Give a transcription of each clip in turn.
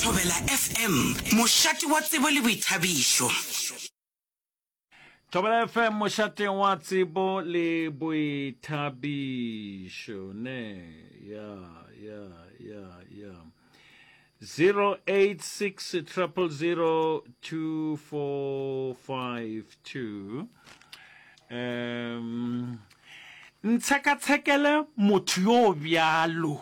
Thobela FM, mošate wa tsebo le boithabišo. Thobela FM mošateng wa tsebo le boithabišo ne ya ya ya ya 086 000 2452 um ntshekatshekele motho yo bjalo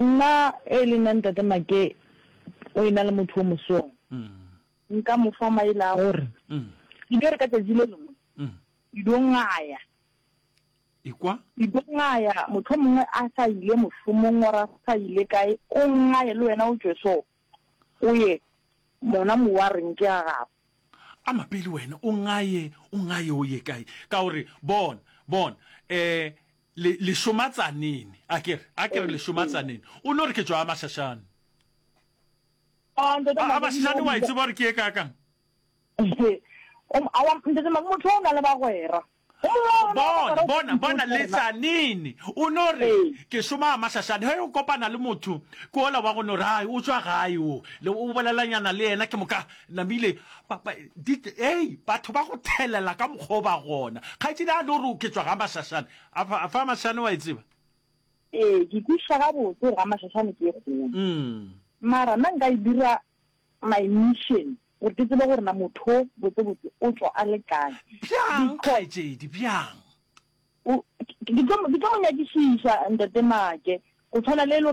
Nna e le nna ntate Make o ena le motho o mosong nka mo fa maele a gore e dire ka tšatši le lengwe ke dio ngaya ikwa ke dio ngaya motho mongwe a sa ile mošomong wa ra sa ile kae o ngaya le wena o tšwe so go ye, mona mo wa reng ke a gago. A mapeli wena, o ngaye, o ngaye o ye kae? Ka o re, Bona, bona, eh, le, le šoma tsanene, a ke re, a ke re le šoma tsanene, o no re ke tšwa Gamashašane. A, Ntate Magomo. Gamashašane wa e tseba gore ke ye kaakang? Aowa, Ntate Magomo, motho o na le bagwera. Ge mongwe wa rena a Bona, bapala o bona, fetile bona, o tla re na. Letsanini o no re, Ee. Ke šoma gamahlašane. Ge o kopana le motho, ke ola wa go no re, Hai, o tšwa gae o? Le o bolelanyana le yena, ke moka namile. Ba, ba, di, hei, batho ba go thelela ka mokgwa o ba gona. Kgaetšedi a no re, Ke tšwa gamahlašane. A fa, a fa gamahlašane wa e tseba? Ee, ke kwešiša gabotse gore gamahlašane ke e kgolo. Umm. Mara nna nka e dira My mission, gore ke tsebe gore na motho o botsebotse o tšwa a le kae. Bjang kgaetšedi, bjang? Ke tlo mo nyakišiša, Ntate Maake, go tshwana le e le gore.